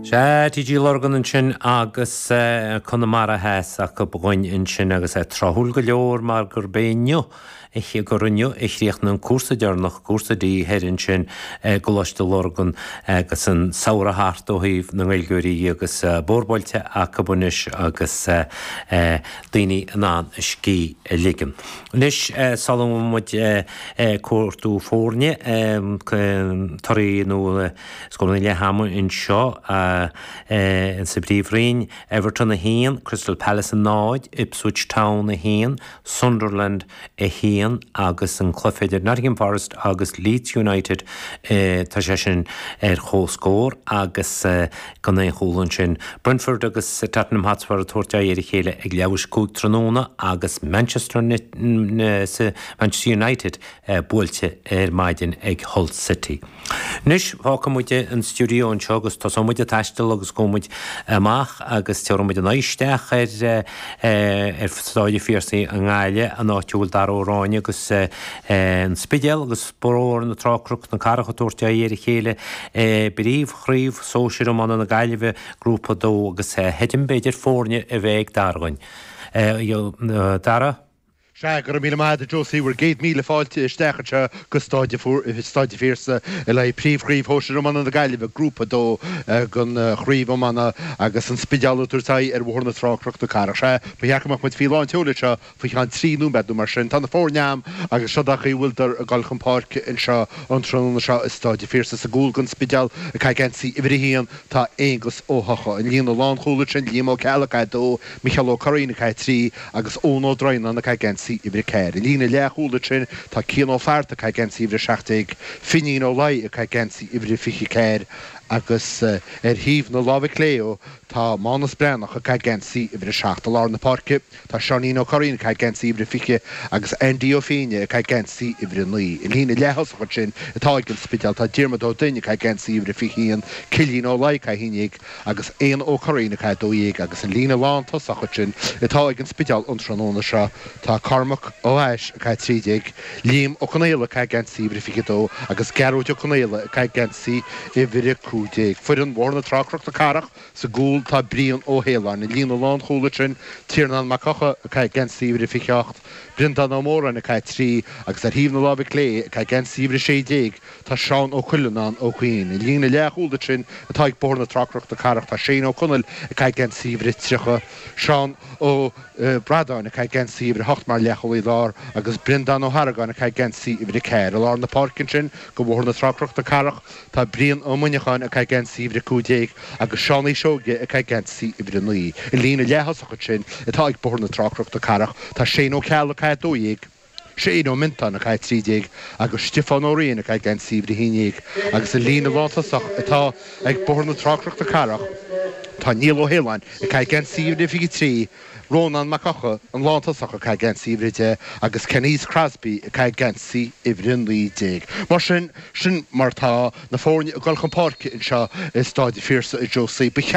Sea, TG Lurgan ansin agus Conamara Theas acu dúinn ansin agus é tráthúil go leor mar gurb é inniu, gur inniu a chríochnaigh an cúrsa deireanach, cúrsa D thoir ansin i gColáiste Lurgan agus an samhradh thart ó thaobh na nGaeilgeoirí dhe agus bóthar buailte acu anois agus daoine in ann a scíth a ligean. Anois, sula ngabhfaidh muid ag cuartú foirne, torthaí nó. Scóranna leath ama anseo sa bPríomhroinn, Everton 1, Crystal Palace 0, Ipswich Town 1, Sunderland 1 agus an cluiche idir Nottingham Forest agus Leeds United, tá sé sin ar comhscór agus gan aon chúl ansin. Brentford agus Tottenham Hotspur ag tabhairt aghaidh ar a chéile ag leathuair tar éis a cúig tráthnóna agus Manchester Manchester United buailte ar maidin ag Hull City. Anois, fágfaidh muid an stiúideo anseo agus tosóidh muid ag taisteal agus gabhfaidh muid amach agus tabharfaidh muid a n-aghaidh isteach ar ar Staid an Phiarsaigh i nGaillimh, an áit a bhfuil Dara Ó Ráinne agus an Spidéal agus Bóthar na Trá Cnoc na Cathrach ag tabhairt aghaidh ar a chéile i bpríomhchraobh sóisir iomána na Gaillimhe, Grúpa 2 agus feicim, b'fhéidir, foirne a bheith ag Dara dhúinn. Dara? Sea, go raibh míle maith agat Josie, bhur gcéad míle fáilte isteach anseo go Staid an Phiarsaigh le haghaidh príomhchraobh shóisir iomána na Gaillimhe, Grúpa 2 den chraobh iomána agus an Spidéal ag tabhairt aghaidh ar Bhóthar na Trá, Cnoc na Cathrach. Sea, ba cheart go mbeadh muid faoi lán tseoil anseo faoi cheann trí nóiméad nó mar sin. Tá na foirne a'am agus seod é an chaoi a bhfuildar ag dul chun páirce anseo an tráthnóna seo i Staid an Phiarsaigh. Sa gcúl don Spidéal, ag caitheamh geansaí uimhir a haon, tá Aonghus Ó hEochaidh, an líne lánchúil uaidh sin, Liam Ó Ceallaigh, ag caitheamh a dó, Micheál Ó Curraoin, ag caitheamh a 3, agus Eoin Ó Droighneáin, ag caitheamh geansaí uimhir a ceathair. An líne leathchúil uaidh sin tá Cian Ó Fátharta, ag caitheamh geansaí uimhir a seacht déag, Finín Ó Laoi, ag caitheamh geansaí uimhir a fiche a ceathair, agus ar thaobh na láimhe clé leo tá Mánus Breathnach, ag caitheamh geansaí uimhir a seacht. I lár na páirce tá Seáinín Ó Curraoin, ag caitheamh geansaí uimhir a fiche, agus Aindí Ó Féinne, ag caitheamh geansaí uimhir a naoi. An líne leath-thosach uaidh sin atá ag an Spidéal tá Diarmaid Ó Duinn, ag caitheamh geansaí uimhir a fiche a haon, Cillín Ó Laoi, ag caitheamh a haon déag, agus Éanna Ó Curraoin, ag caitheamh a 12 agus an líne lántosach uaidh sin atá ag an Spidéal an tráthnóna seo, tá Cormac Ó h-Ais, ag caitheamh a 13, Liam Ó Conaola, ag caitheamh Geansaí Uimhir 22 agus Gearóid Ó Conaola, ag caitheamh Geansaí Uimhir 15. Foireann Bhóthar na Trá Cnoc na Cathrach sa gcúl, tá Brian Ó hAoláin, an líne lánchúil uaidh sin, Tiarnán Mac Eocha, ag caitheamh Geansaí Uimhir 28, Breandán Ó Móráin, ag caitheamh a 3 agus ar thaobh na láimhe clé, ag caitheamh Geansaí Uimhir 16, Tá Seán Ó Cuileannáin ó Chuinn i líne leathchúil ansin atá ag Bóthar na Trá Cnoc na Cathrach, tá Shane Ó Conaill ag caitheamh geansaí uimhir 30, Seán Ó Bradáin ag caitheamh geansaí uimhir 8 mar leathchúlaí lár agus Brendán Ó hArgáin ag caitheamh geansaí uimhir 4. I lár na páirce ansin do Bhóthar na Trá Cnoc na Cathrach tá Brian Ó Muineacháin ag caitheamh geansaí uimhir 15 agus Seán Seoige ag caitheamh geansaí uimhir 9. I líne leaththosach ansin atá ag Bóthar na Trá Cnoc na Cathrach tá Shane Ó Ceallaigh ag caitheamh 12, Shane Ó Miontáin, ag caitheamh 13, agus Stiofán Ó Riain, ag caitheamh geansaí uimhir 11, agus an líne lántosach atá ag Bóthar na Trá Cnoc na Cathrach, tá Niall Ó hAoláin, ag caitheamh geansaí uimhir a 23, Rónán Mac Eochaidh, an lántosach, ag caitheamh geansaí uimhir 10, agus Canice Crosbie, ag caitheamh geansaí uimhir 19. Mar sin, sin mar atá na foirne ag dul chun páirce anseo i Stáid an Phiarsaigh, a Josie. Ba cheart.